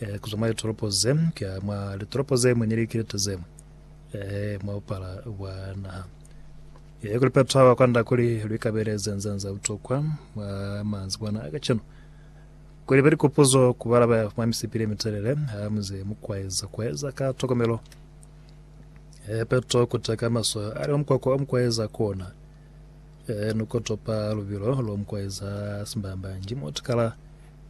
eh, kuzwa mwa litoropo ze kuya mwa litoropo ze mwe ni likilete ze mwe eh, mwa bupala bwa naha eh, kuli Petro haba kwanda kuli lwikabeleze nzanza butokwa mwa manzi bwana akacenu kuli be likupuzo kubalaba mwa misipili mitelele ha muze mukwaeza kwaeza ka tokomelo eh, Petro kuteka maso ali wa mukwakwa wa mukwaeza kona eh, nukotopa lubilo lwa mukwaeza simbamba njimo tikala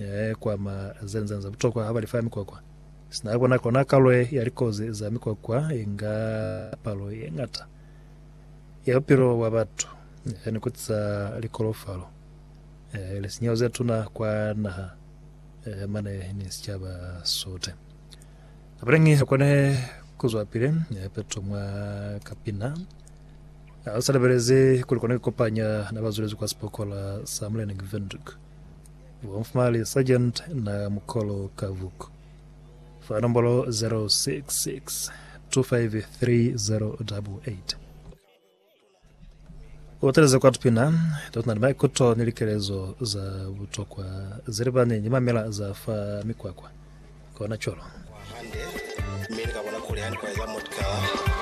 Ee, kwama ze nzani za butokwa ha ba li fa mikwakwa. Sina ya bona kona kalo ye ya likozi za mikwakwa inga palo ye ngata ya bupilo bwa batu, ee, ni kuti za likolofalo, ee, lisinyeho ze tuna kwa naha, ee, mane ni sicaba sote. Kapileñi ha kone ku zwapile, ee, peto mwa kapina, ha sa lebelezi kuli kone ku kopanya na ba zwelezi kwa sipokola sa Mulena Gvenduk. Bonfumali Sargent na Mukolo Kavuk fa nombolo 066 253 Uteleze kwa tupina totuna ni maikuto ni likelezo za butokwa zelibani ni mamela za fa mikwakwa kona cwalo. Hande, mi ni ka bona kuli ha ni kweza mutkaa.